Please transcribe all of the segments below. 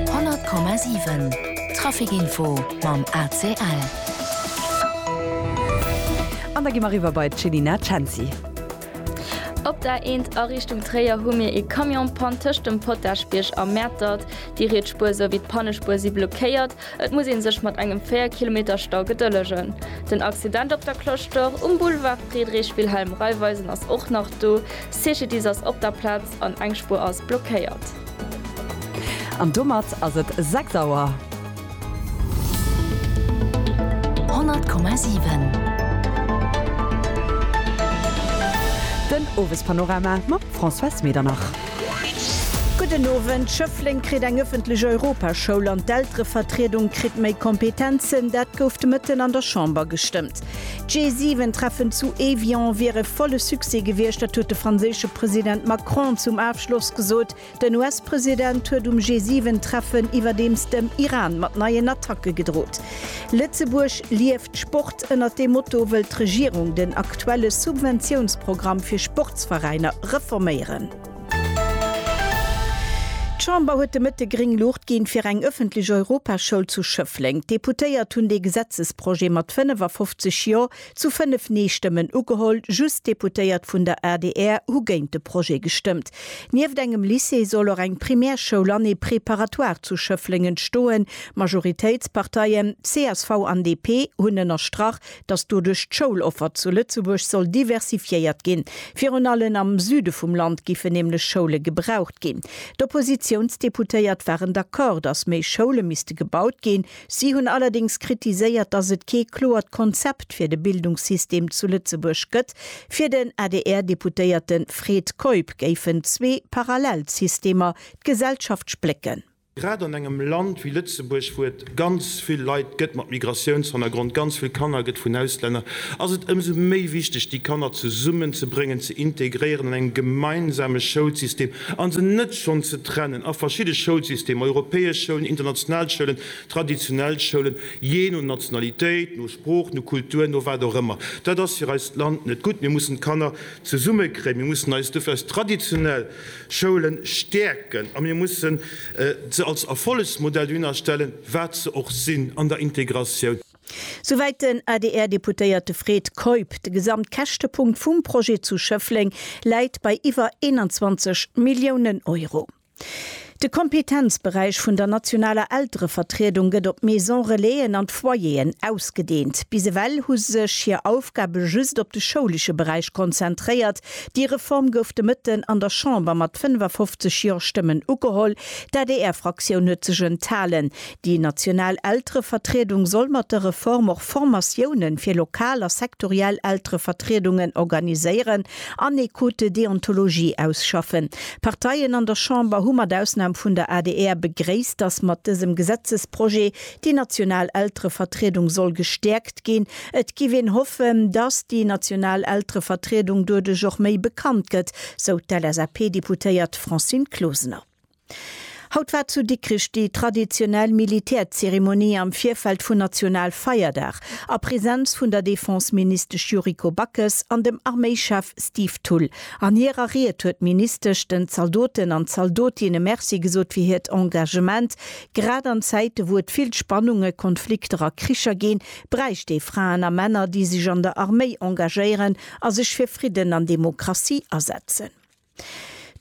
100,7 Trafic Info mam ACL. An da gi mer eriwwer bei d'Chelina Cenci. Op der Eent a Richtung Tréier hu mir ee Camion-Pann tëscht dem Potaschbierg a Mäertert. Déi riets Spuer souwéi d'Pannespuer si blockéiert. Et muss ee sech mat engem 4 Kilometer Stau gedëllegen. Den Accident op der Cloche d'Or um Boulevard Friedrich Wilhelm Raiffeisen ass och nach do. Cecidis ass op der Plaz. An eng Spuer ass blockéiert. An domat ass et 6 Auer. 100,7. Den Owespanorama mam Françoise Medernach. Gudden Owend. Schëffleng kritt eng ëffentlech Europaschoul an d'Elterevertriedung kritt méi Kompetenzen. Dat gouf de Mëtten an der Chamber gestëmmt. D'G7 Treffen zu Evian wier e volle Succès gewiescht, dat huet de franséische President Macron zum Afschloss gesot. Den US-President huet um G7 Treffen iwwerdeems dem Iran mat neien Attacke gedrot. Lëtzebuerg lieft Sport, ënnert deem Motto wëll d'Regierung den aktuelle Subventiounsprogramm fir Sportsveräiner reforméieren. D'Chamber huet de Mëtte gréng Luucht ginn, fir eng ëffentlech Europaschoul zu Schëffleng. D'Deputéiert hunn dee Gesetzesprojet mat 55 Jo zu 5 Nee-Stëmmen ugeholl. Just d'Deputéiert vun der adr hu géint de Projet gestëmmt. Nieft engem Lycée soll och eng Primärschoul an ee Préparatoire zu Schëffleng entstoen. D'Majoritéitsparteien, csv an DP, hunn ënnerstrach, dass doduerch d'Schouloffer zu Lëtzebuerg soll diversifiéiert ginn. Virun allen am Süde vum Land giffen nämlech Schoule gebraucht ginn. D'Oppositiounsdeputéiert waren d'accord, dass méi Schoule misste gebaut ginn. Si hunn allerdéngs kritiséiert, dass et kee kloert Konzept fir de Bildungssystem zu Lëtzebuerg gëtt. Fir den ADR-Deputéierte Fred Keup géifen zwee parallel Systemer d'Gesellschaft splécken. Grad an engem Land wéi Lëtzebuerg, wou et ganz vill Leit gëtt mat Migratiounshannergrond, ganz vill Kanner gëtt vun Auslänner, ass et ëmsou méi wichteg, déi Kanner zesummen ze bréngen, ze integréieren an engem gemeinsame Schoulsystem an se net schonn ze trennen a verschidde Schoulsystemer, europäesch Schoulen, international Schoulen, traditionell Schoulen, jee no Nationalitéit, no Sprooch, no Kultur, no wat och ëmmer. Dat ass fir eist Land net gutt. Mir mussen d'Kanner zesummekréien. Mir mussen eis dofir eis traditionell Schoulen stäerken a mir mussen se als Erfollegsmodell dohinner stellen, wat se och sinn an der Integratioun. Souwäit den ADR-Deputéierte Fred Keup. De Gesamtkäschtepunkt vum Projet zu Schëffleng läit bei iwwer 21 Milliounen Euro. De Kompetenzberäich vun der nationaler Elterevertriedung gëtt op d'Maison-relaisen an d'Foyeren ausgedeent. Bis ewell hu sech hir Aufgabe just op de schoulesche Beräich konzentréiert, Déi Reform gouf de Mëtten an der Chamber mat 55 Jo-Stëmmen ugeholl. D'ADR-Fraktioun huet sech enthalen. Déi national Elterevertriedung soll mat der Reform och Formatiounen fir lokal a sektoriell Elterevertriedungen organiséieren an ee Code de déontologie ausschaffen. D'Parteien an der Chamber hu mat Ausnam vun der adr begréisst, datt mat dësem Gesetzesprojet Déi national Elterevertriedung soll gestäerkt ginn. Et giff een hoffen, dass déi national Elterevertriedung doduerch och méi bekannt gëtt, sou d'LSAP-Deputéiert Francine Closener. Haut war zu Dikrich déi traditionell Militärzeremonie am Virfeld vun Nationalfeierdag a Präsenz vun der Defenseministesch Yuriko Backes an dem Arméichef Steve Thull. An hirer Ried huet d'Ministesch den Zaldoten an Zaldotinne Merci gesot fir hiert Engagement, Grad an Zäite wou et vill Spannunge, Konflikter a Kricher ginn, bräicht ee Fraen a Männer, déi sech an der Arméi engagéieren a sech fir Fridden an Demokratie asetzen.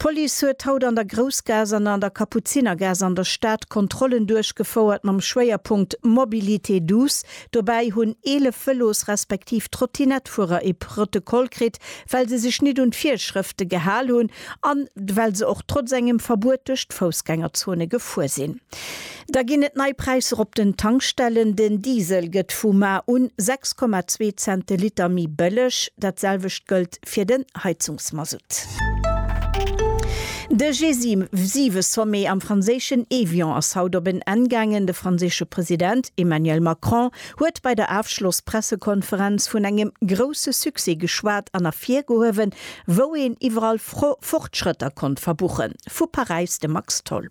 D'Police huet haut an der Groussgaass an an der Kapuzinergaass an der Stad Kontrollen duerchgefouert mam Schwéierpunkt Mobilité douce. Dobäi hunn 11 Vëlos respektiv Trottinettfuerer ee Protokoll kritt, well se sech nit un d'Virschrëfte gehal hunn An well se och trotz engem Verbuet duerch d'Foussgängerzone gefuer sinn. Da ginn et nei Präisser op den Tankstellen, Den Diesel gëtt vu mar un 6,2 Cent de Liter méi bëlleg. Dat selwecht gëllt fir den Heizungsmasutt. De G7-Sommet am franséischen Évian ass haut op en Enn gaangen. De franséische President Emmanuel Macron huet bei der Afschloss-Pressekonferenz vun engem grousse Succès geschwat an ervirgehuewen, Wou een iwwerall Fortschrëtter konnt verbuchen. Vu Paräis de Max Tholl.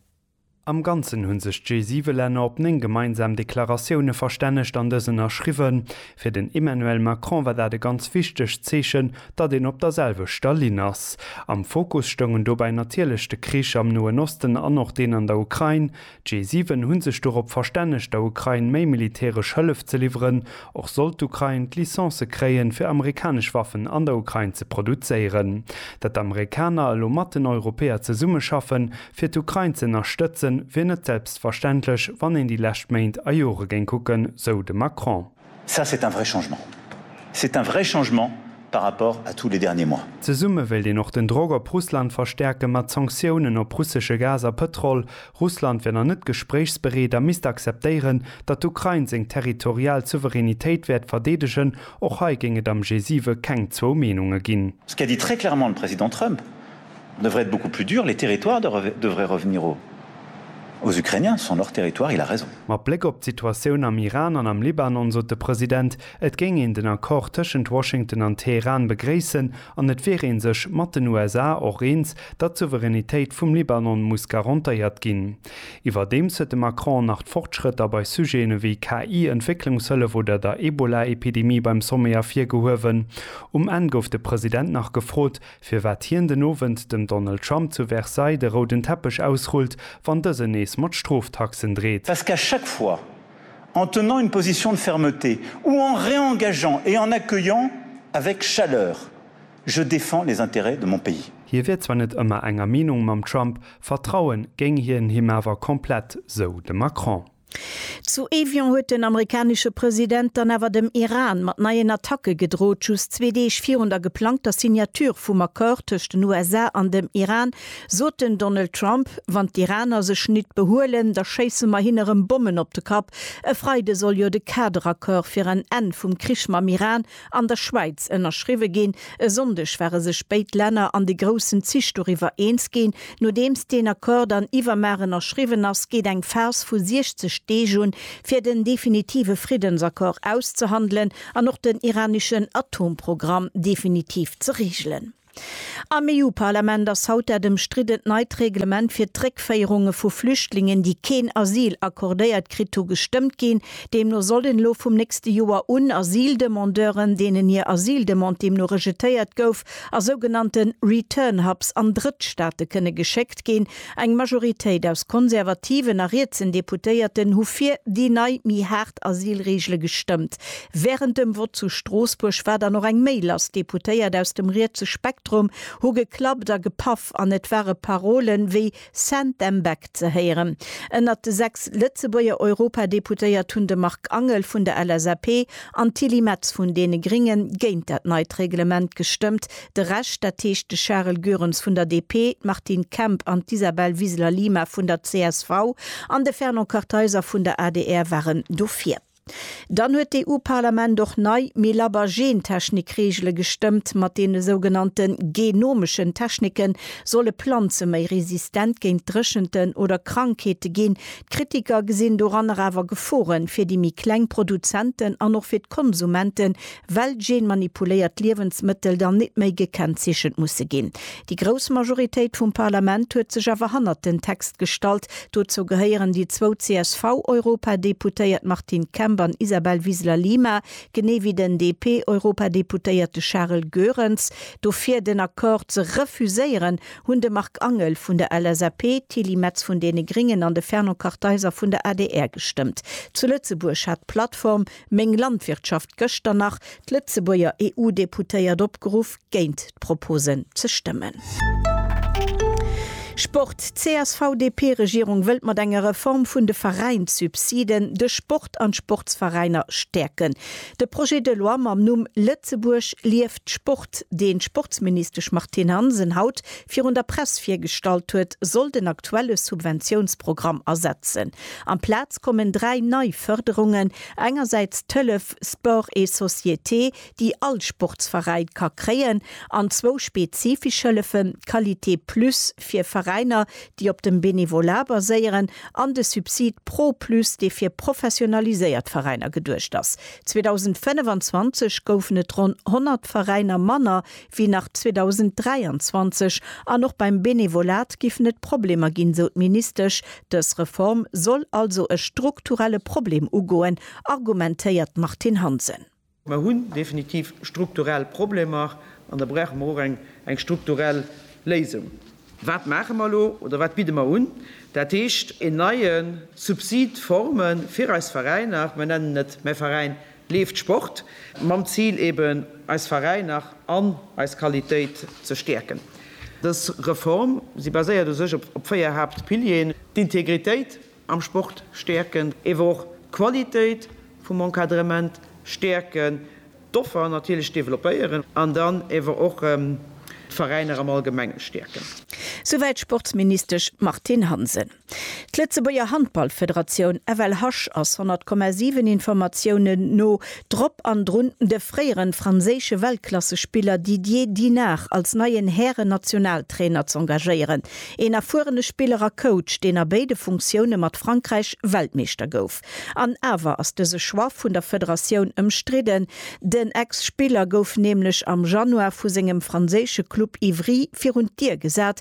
Am Ganzen hunn sech d'G7-Länner op 9 gemeinsam Deklaratioune verstännegt an dës ënnerschriwwen. Fir den Emmanuel Macron war dat e ganz wichtegt Zeechen, datt een op der selwechter Linn ass. Am Fokus stoungen dobäi natierlech de Krich am Noen Osten an och deen an der Ukrain. D'G7 hunn sech dorop verstännegt der Ukrain méi militäresch Hëllef ze liwweren, och sollt d'Ukrain d'Licence kréien fir amerikanesch Waffen an der Ukrain ze produzéieren. Datt d'Amerikaner elo mat den Europäer zesummeschaffen fir d'Ukrain ze ënnerstëtzen, wier net selbstverständlech wann een déi lescht Méint a Jore géing kucken, sou de Macron. Ça, c'est un vrai changement. C'est un vrai changement par rapport à tous les derniers mois. Zesumme wéilt een och den Drock op Russland verstäerken, mat Sanktiounen op russesche Gas a Pëtrol. Russland wier nach net gespréichsbereet a misst akzeptéieren, datt d'Ukrain seng territorial Souveränitéit wäert verdeedegen. Och hei géing et am G7 keng zwou Meenunge ginn. Ce qu'a dit très clairement le Président Trump, devrait être beaucoup plus dur, les territoires devraient revenir aux Ukrainiens, ce sont leurs territoires, il a raison. Mat Bléck op d'Situatioun am Iran an am Libanon sot de President, et géing een den Accord tëschent Washington an Teheran begréissen an et wier ee sech mat den USA och eens, datt d'Souveränitéit vum Libanon muss garantéiert ginn. Iwwerdeems huet de Macron nach d'Fortschrëtter bei Sujeten ewéi KI, Entwécklungshëllef oder der Ebola-Epidemie beim Sommet ervirgehuewen. Um Enn gouf de President nach gefrot, firwat hien den Owend dem Donald Trump zu Versailles de rouden Teppech ausrullt, wann dësen nees mat Stroftaxen dreet. Parce qu'à chaque fois, en tenant une position de fermeté ou en réengageant et en accueillant avec chaleur, je défends les intérêts de mon pays. Hie wier zwar net ëmmer enger Meenung mam Trump, vertrauen géing hien him awer komplett, sou de Macron. Zu Evian huet den amerikanesche President dann awer dem Iran mat neien Attacke gedrot. Just zwee Deeg virun der geplangter Signature vum Accord tëscht den USA an dem Iran sot den Donald Trump, Wann d'Iraner sech nit behuelen, da schéisse mer hinne rëm Bommen op de Kapp. E Freide soll jo de Kaderaccord fir en Enn vum Krich mam Iran an der Schwäiz ënnerschriwwe ginn. E Sonndeg ware sech béid Länner an de groussen Zich doriwwer eens ginn. Nodeems deen Accord dann iwwermar ënnerschriwwen ass, geet eng Phas vu 60 Deeg un, fir den definitive Friddensaccord auszehandelen an och den iraneschen Atomprogramm definitiv ze reegelen. Am EU-Parlament ass haut dat ëmstriddent neit Reglement fir d'Réckféierunge vu Flüchtlingen, déi keen Asyl accordéiert kritt hu, gestëmmt ginn. Deemno sollen elo vum nächste Joer un Asyldemandeuren, deenen hir Asyldemande deemno rejetéiert gouf, a sougenannte Return Hubs an Drëttstaate kënne geschéckt ginn, Eng Majoritéit aus konservativen a rietsen Deputéierten hu fir déi nei, méi haart Asylreegele gestëmmt. Wärend dem Vott zu Stroossbuerg war dann och eng méi lass. Deputéiert aus dem rietse Spektrum hu geklappt a gepaff an et ware Parole wéi Send them back ze héieren. Ënnert de sechs Lëtzebuerger Europadeputéiert hunn de Marc Angel vun der LSAP an d'Tilly Metz vun deene Gringe géint dat neit Reglement gestëmmt. De Rescht, dat heescht de Charel Goerens vun der DP, d'Martine Kemp an d'Isabel Wiseler-Lima vun der csv an de Fernand Kartheiser vun der adr waren dofir. Dann huet d'EU-Parlament och nei, méi labber Gentechnik-Reegele gestëmmt. Mat deene sougenannte genomeschen Technike solle Planze méi resistent géint Dréchenten oder Krankheete ginn. D'Kritiker gesinn doranner awer Gefore fir déi méi kleng Produzenten an och fir d'Konsumente well genmanipuléiert Liewensmëttel dann nit méi gekennzeechent musse ginn. Déi grouss Majoritéit vum Parlament huet sech awer hannert den Text gestallt. Dozou gehéieren déi zwou CSV-Europadeputéiert Martine Kemp an Isabel Wiseler Lima, genee wéi den DP-Europadeputéierte Charel Goerens. Dofir den Accord ze refuséieren, hunn de Marc Angel vun der LSAP, d'Tilly Metz vun deene Gringen an de Fernand Kartheiser vun der adr gestëmmt. Zu Lëtzebuerg hat d'Plattform Meng Landwirtschaft gëschter nach d'Lëtzebuerger EU-Deputéiert opgeruff, géint d'Proposen ze stëmmen. Sport, D'CSV-DP-Regierung wëllt mat enger Reform vun de Veräinssubsiden de Sport an d'Sportsveräiner stäerken. De Projet de loi mam Numm Lëtzebuerg lieft Sport, deen d'Sportsministesch Martine Hansen haut virun der Press virgestallt huet, soll den aktuelle Subventiounsprogramm ersetzen. Amplaz kommen dräi nei Fërderungen, engersäits d'Hëllef Sport et Société, déi all Sportsveräin ka kréien, an zwou spezifesch Hëllefen, d'Qualité Plus fir Veräiner, déi op dem Bénévolat baséieren, an de Subsid Pro Plus, dee fir professionaliséiert Veräiner geduecht ass. 2025 goufen et ronn 100 Veräiner manner wéi nach 2023 an och beim Benevolat géifen et Problemer ginn, esou d'Ministesch. Dës Reform soll also e strukturelle Problem ugoen, argumentéiert d'Martine Hansen. Mer hunn definitiv strukturell Problemer an da brauche mer och eng strukturell Léisung. Wat maache mer elo oder wat bidde mer un? Dat heescht, een neie Subsid forme fir eis Veräiner, mer nennen et, mä Veräin, Leeft Sport, mam Zil eben eis Veräiner an eis Qualitéit ze stäerken. Dës Reform, si baséiert u sech op véier Haaptpilieren, d'Integritéit am Sport stäerken, ewer och d'Qualitéit vum Encadrement stäerken, d'Offer natierlech developpéieren an dann ewer och d'Veräiner am Allgemenge stäerken. Souwäit d'Sportsministesch Martine Hansen. D'Lëtzebuerger Handballfederatioun, FLHasch, ass 100,7 Informatiounen no drop an drun, de fréiere franséische Weltklassespiller Didier Dinard als neien Hären-Nationaltrainer z'engagéieren. Een erfuerene Spiller a Coach, deen a béide Funktioune mat Frankräich Weltmeeschter gouf. An awer ass dëse Choix vun der Federatioun ëmstridden. Den Ex-Spiller gouf nämlech am Januar vu sengem franséische Club Ivry virun d'Dier gesat,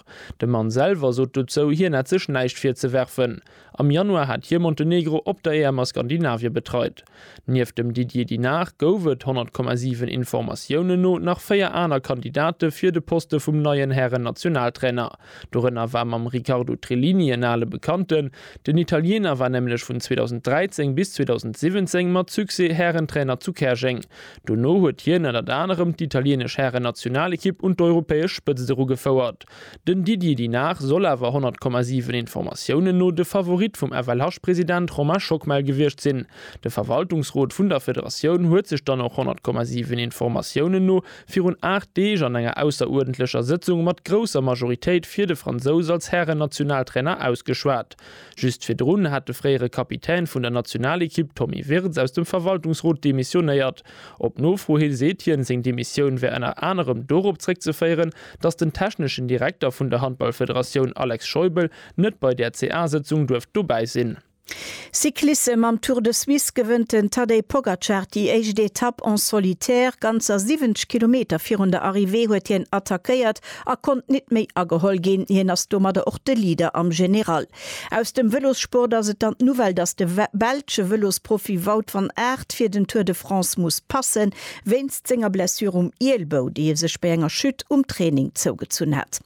De Mann selwer sot dozou, hien hätt sech näischt virzewerfen. Am Januar hat hie Montenegro op der EM a Skandinavie betreit. Nieft dem Didier Dinard gouf et, 100,7 Informatiounen no, nach véier aner Kandidate fir de Poste vum neien Hären-Nationaltrainer. Dorënner war mam Riccardo Trillini en ale Bekannten. Den Italiener war nämlech vun 2013 bis 2017 mat Succès Härentrainer zu Käerjeng. Dono huet hien ënnert anerem d'italieenesch Hären-Nationalekipp un d'europäesch Spëtzt erugefouert. Den Didier Dinard soll awer, 100,7 Informatiounen no, de Favorit vum FLH-President Romain Schockmel gewiescht sinn. De Verwaltungsrot vun der Federatioun huet sech dann och, 100,7 Informatiounen no, virun 8 Deeg an enger ausseruerdentlecher Sëtzung mat grousser Majoritéit fir de Fransous als Hären-Nationaltrainer ausgeschwat. Just virdrun hat de fréiere Kapitän vun der Nationalekipp Tommy Wirtz aus dem Verwaltungsrot demissionéiert. Op Nofro hi seet hien, seng Demissioun wär ënner anerem dorop zréckzeféieren, datt den techneschen Direkter vun der Handballfederatioun Alex Scheubel net bei där CA-Sëtzung duerft dobäi sinn. Cyclissem, Am Tour de Suisse gewënnt den Tadej Pogacar déi éischt Etapp en solitaire. Ganzer 70 Kilometer virun der Arrivée huet hien attackéiert a konnt nit méi ageholl ginn. Hien ass domadder och de Leader am General. Aus dem Vëlossport ass et dann d'Nouvelle, dass de belsche Vëlosprofi Wout van Aert fir den Tour de France muss passen, wéinst senger Blessure um Ielbou, déi e sech bei enger Chute um Training zougezunn hat.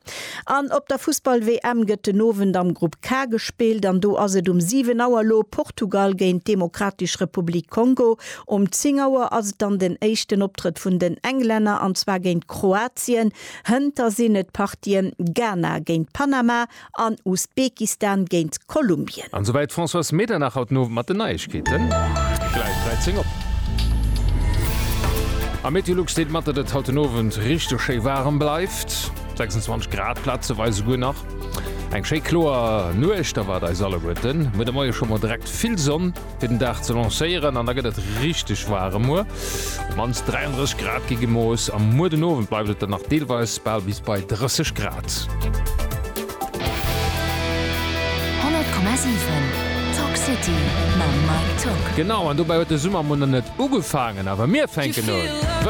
An op der Fussball-WM gëtt den Owend am Grupp K gespillt an do ass et um 7 Auer elo Portugal géint d'Demokratisch Republik Kongo Um 10 Auer ass et dann den éischten Optrëtt vun den Englänner, an zwar géint Kroatien. Hënter sinn et d'Partien Ghana géint Panama an Usbekistan géint Kolumbien. An souwäit d'Françoise Medernach haut den Owend mat den Neiegkeeten. Gläich 13 op. Am Meteolux deelt mat, datt et haut den Owend richteg schéi waarem bleift, 26 Grad plazeweis esouguer nach. Eng schéi kloer Nuecht erwaart eis alleguerten. Muer de Moie scho mol direkt vill Sonn. fir den Dag ze lancéieren an da gëtt et richteg waarem. Muer mannst 33 Grad gi gemooss a muer den Owend bleift et dann nach deelweis bal bis bei 30 Grad. Genau, an dobäi huet de Summer munner net ugefaangen, awer mir fänken un.